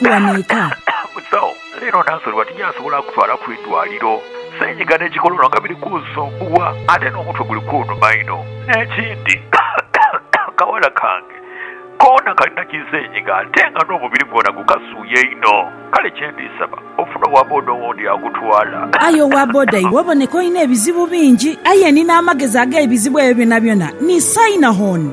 tughanhika. Musawo, leero naasoloibwa tinyasobola kutwala ku idwaliro. Seenyiga n'ekikololo nga biri kunsumbuwa ate n'omutwe guli kunuma inho. N'ekindi, akawala kange koona kalina ki seenyiga ate nga n'omubiri gwona gukasuuya inho. Kale kye ndi saba ofune owa boda owundi akutwala. Aye owa boda iwe oboneka olina ebizibu bingi. Aye ni n'amagezi ag'ebizibu ebyo byonabyona ni saina hon.